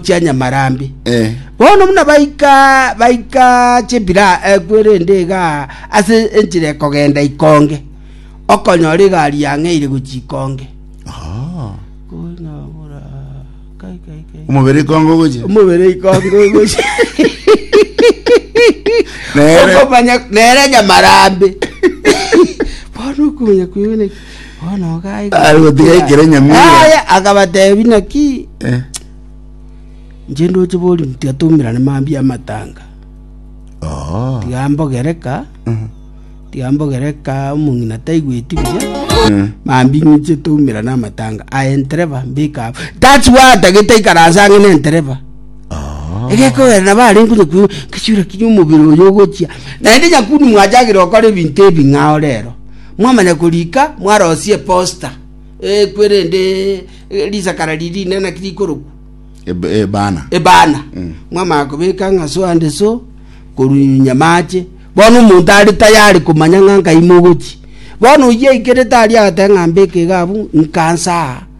chia nyamarambe. Eh. Bono buna baika baika chepira ekwe rende iga ase enchera ekogenda ikonge, okonyora egari yang'eire gochia ikonge. Oh. Konyagora kai kai kai. Omobere ikongo gocha. Omobere ikonge gochia. Nere. Okomanya nere nyamarambe. Bono okomanya kwegene Bono iga Ari gotiga aigotera ekero nyamira. Yaya, akabatebia naki Eh, inche ndoche bori tiga toumerane mambia amatanga oo. tiga mbogereka Mhm. tiga mbogereka omong'ina taigweti buya Eh, mambi ng'inche toumerane amatanga aye ntereba mbikabo that's why atagete ikaransa ang'e na entereba oo. egekogera nabo are nkonye kwe kechura kinya omobere oyo ogochia naende nyakuni mwachagire gokora ebinto ebing'ao rero Mwamanya korika, mwarosie eposta ekwe, erinde risakara riria rinene naki rikorokwa Eb- Ebana. ebana mwamanya kobeka ng'aso ande so korunyunya mache bono omonto are tayari komanya ng'a nkai mogochi bono oyia aikerete aria agateba ng'a mbeke iga abwo nkansaa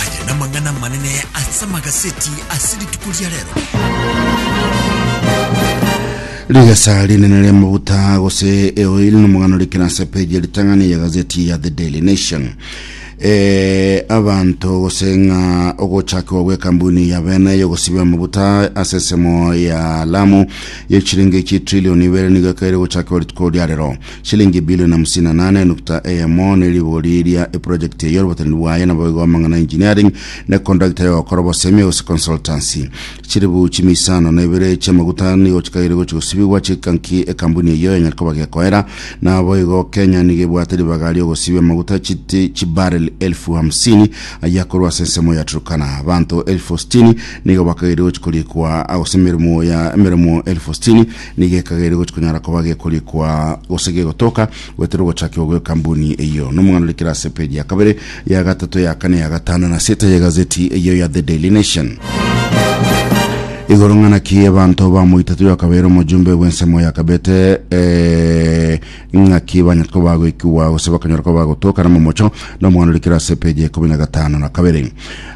Aya namang'ana amanene ase amagaseti ase rituko ria rero. rigesa rinene ria maguta gose eoil nomogano rikena ase page ritang'ani ya gazeti ya the daily nation Eh, abanto gose ng'a ogochakwa gw'ekambuni ya bene yogosiba amaguta ase ensemo ya lamu ye chiringi chi trilioni ibere nigo ekaire gochakwa rituko ria rero Shilingi ebilioni hamsini na nane enukta eyemo ne rigori ria eprojekiti eyio robataniri bwaye naboigo amang'ana engineering ne kondagita yogokora obosemi gose consultancy. Chiribu chimia isano na ibere chi'amaguta nigo chikaiire gochia gosibigwa chika nki ekambuni eyio yanyare koba gekoera. Naboigo Kenya nigo ebwate ribaga ri'ogosibia amaguta chiti chibarrel elfu hamsini ayio akorwa ase ensemo ya Turkana. Abanto elfu sitini nigo bakaiire gochia koriikwa gose emeremo ya emeremo elfu sitini Nigo ekagera egochia konyara koba gekorikwa gose gegotoka, goetera ogochakigwa gw'ekambuni eyio. Nomong'ana ore kera ase epeji ya kabere, ya gatato, ya kane, ya gatano, na seta y'egazeti eyio ya The Daily Nation. Igoro ng'a naki abanto bamoitato yakabeire omojumbe bw'ensemo yakabete eh, Ing'aki banyete koba agoikigwa gose bakanyora koba agotookana momocho nomwana ore kirase epeji ya ikomi na gatano na kabere.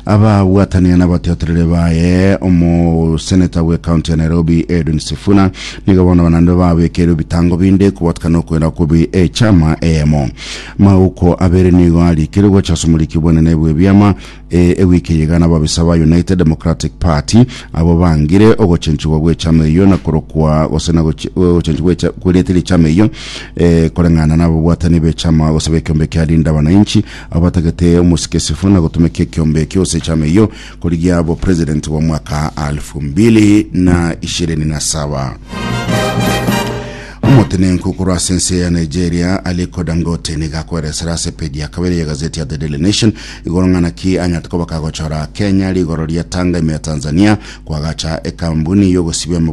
Ababwatanire nabatiotereri baye omoseneta bw'ekaunti ya Nairobi Edwin Sifuna nigo bono banande babekeire ebitango binde kobwatakana nokwera okubi echama eyemo. Mauko abere nigo arikire gocha ase omoriki bwenene bw'ebiama Ee, ewiki eye iga nababisa ba United Democratic Party abwo bangire ogochenchigwa gw'echama eyio na korokwa gose na goche- eh, ogochenchigwa gw'echa- kw'erieta ri'echama eyio eh, koreng'ana n'ababwatani b'echama gose b'ekiombe kia Linda Wananchi abo batagete omosikesifo na gotumeka ekiombe ekio gose echama eyio korigia obopresident bwa omwaka 2027. Omotenenku korwa ase ense ya Nigeria Aliko Dangote nigo akweresera ase page ya kabere y'egazeti ya The Daily Nation Igoro ng'ana ki anyarete kobaka gochora Kenya rigoro ria Tanga ime ya Tanzania, kwagacha ekambuni y'ogosibia amabuta